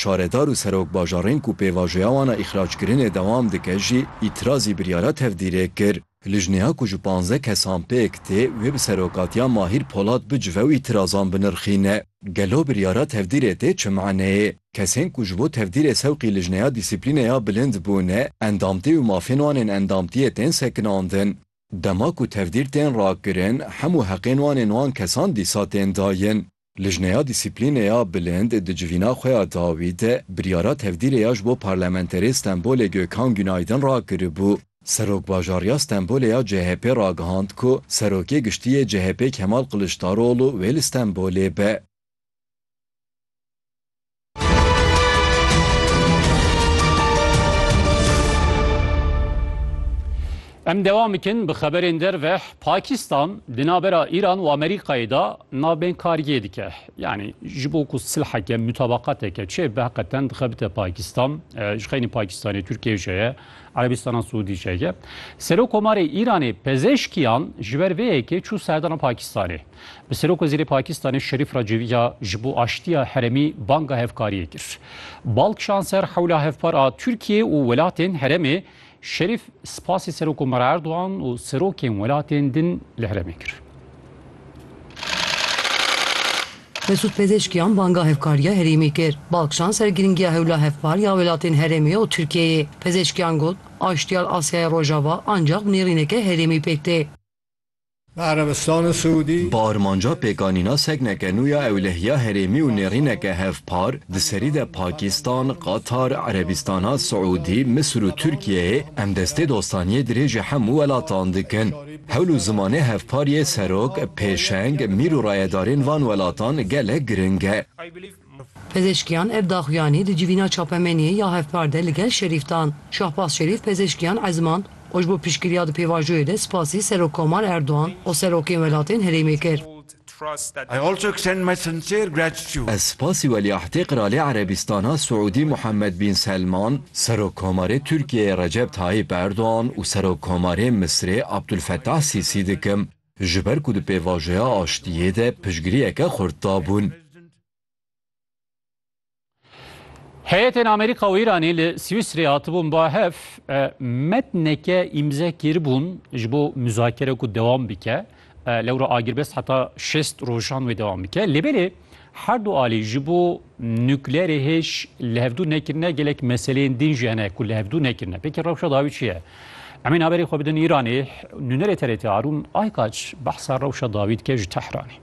Şaredar û serok bajarên ku pêvajoya wan a îxrackirinê dewam dike jî îtîrazî biryara tevdîrê kir. Lijneya ku ji panzdeh kesan pêk tê wê bi serokatiya Mahîr Polat bicive û îtîrazan binirxîne. Gelo biryara tevdîrê tê çi maneyê? Kesên ku ji bo tevdîrê sewqî Lijneya Dîsîplînê ya Bilind bûne, endamtî û mafên wan ên endamtiyê tên sekinandin. Dema ku tevdîr tên rakirin, hemû heqên wan ên wan kesan dîsa tên dayin. Lijneya Dîsîplînê ya Bilind di civîna xwe ya dawî de biryara tevdîrê ya ji bo parlamenterê Stenbolê Gökhan Günaydın rakiribû. Serokbajar ya Stenbolê ya CHP'ê ragihand ku Serokê Giştî yê CHP'ê Kemal Kiliçdaroglu wê li Stenbolê be. Em devam bikin bi xeberên derve Pakistan di navbera Îran û Amerîkayê de navbên kariyê dike. Yanî ji bo ku silheke mutabaqateke çê bi heqeten dixebite Pakistan e, ji xeynî Pakistanê Tirkiye jî ye, Erebistana Siûdî jî ye. Serokkomarê Îranê pezêşkiyan ji ber vê yekê çû serdana Pakistanê. Bi Serokwezîrê Pakistanê Şerîf Racivî ya ji bo aştiya heremî banga hevkariyê kir. Balk şanser hewla hevpar a Tirkiyê û welatên heremê Şerîf spasê Serokomar Erdogan û serokên welatên din li heremê kir. Mesûd Pezeshkiyan banga hevkariya herêmî kir. Balk şanser girîngiya hewla hevpar ya welatên heremê û Tirkiyeyê. Pezeshkiyan got, Aştiya li Asyaya Rojava ancaq bi nêrîneke herêmî pêk tê. Li Erebistana Siûdî. Bi armanca pêkanîna sekneke nû ya ewlehiya herêmî û nêrîneke hevpar di serî de Pakîstan, Qatar, Erebîstana Siûdî, Misir û Tirkiyeyê em destê dostaniyê dirêjî hemû welatan dikin. Hewl û zimanê hevpar yê serok, pêşeng, mîr û rayedarên van welatan gelek giring e. Pezêşkiyan ev daxuyanî di civîna çapemeniyê ya hevpar de li gel Şerîf dan. Şahbaz Şerîf pezêşkiyan ezimand û ji bo piştgiriya di pêvajoyê de spasî Serokkomar Erdogan û serokên welatên herêmê kir. Ez spasî Welîahdê Qiralê Erebîstana Siûdî Muhammed Bîn Selman, Serokkomarê Tirkiyeyê Recep Tayîp Erdogan û Serokkomarê Misrê Abdulfetah Sîsî dikim. ji ber ku di pêvajoya aştiyê de piştgiriyeke xurt dabûn. Heyetên Amerîka û Îranê li Swîsreyê hatibûn ba hev metneke îmze kiribûn ji bo muzakere ku dewam bike. Lewra agirbest heta şêst rojan wê dewam bike. Lê belê Her du alî ji bo nukleerê hêj li hevdû nekirine gelek meseleyên din jî hene ku li hevdû nekirine. Pêkî rewşa dawî çi ye? Emîn haberê xwe bidin Îranê. Nûnerê TRT Arûn Aykaç behsa rewşa dawî dike ji Tehranê.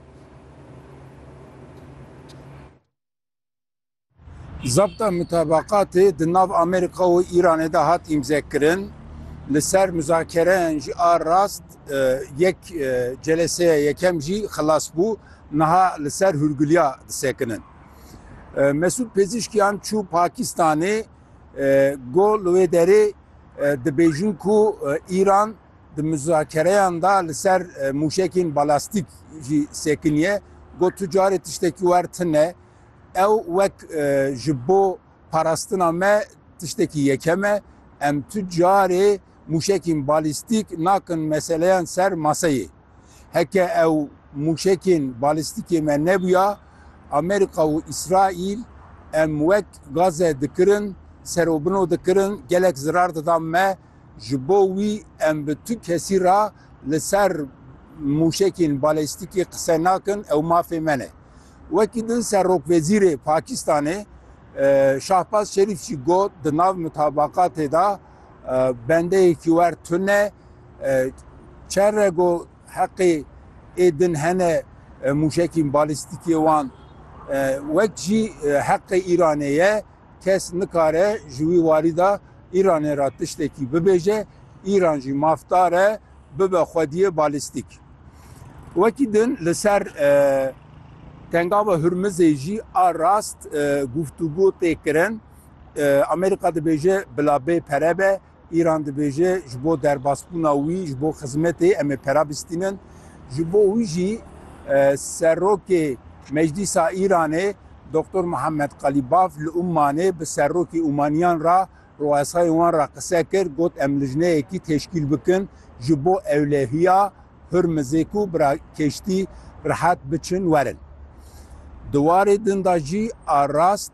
Zabta mutabaqatê di nav Amerîka û Îranê de hat îmzekirin. Li ser muzakereyan jî a rast yek celeseya yekem jî xilas bû. Niha li ser hûrgiliya disekinin. Mesûd Pezîşkiyan çû Pakistanê go li wê derê dibêjin ku Îran di muzakereyan de li ser mûşekên balastîk jî sekiniye. Got tu carê tiştekî wer tune. Ew wek ji bo parastina me tiştekî yekem e. Em tu carê mûşekên balîstîk nakin meseleyan ser maseyê. Heke ew mûşekên balîstîkê me nebûya, Amerîka û Îsraîl em wek Gaze dikirin, serobino dikirin, gelek zirar dida me. Ji bo wî em bi tu kesî re li ser mûşekên balîstîkê qise nakin, ew mafê me ne. Wekî din Serokwezîrê Pakîstanê Şahbaz Şerîf jî got, di nav mutabaqatê de bendeyekî wer tun e, çend rego heqê ê din hene mûşekîn balîstîkê wan wek jî heqê Îranê ye. Kes nikare ji wî warî de Îranê re tiştekî bibêje, Îran jî maf dare bibe xwediyê balîstîk. Wekî din li ser Tengava Hurmizê jî a rast guftûgo tê kirin. Amerîka dibêje bila bê pere be Îran dibêje ji bo derbasbûna wî ji bo xizmetê em ê pera bistînin. Ji bo wî jî Serokê Meclîsa Îranê Doktor Muhammed Qalîbaf li Ummanê bi serokê Ummaniyan re rûesayên wan re qise kir, got em lijneyekî teşkîl bikin ji bo ewlehiya Hurmizê ku bi keştî rihet biçin werin. Di warê din de jî a rast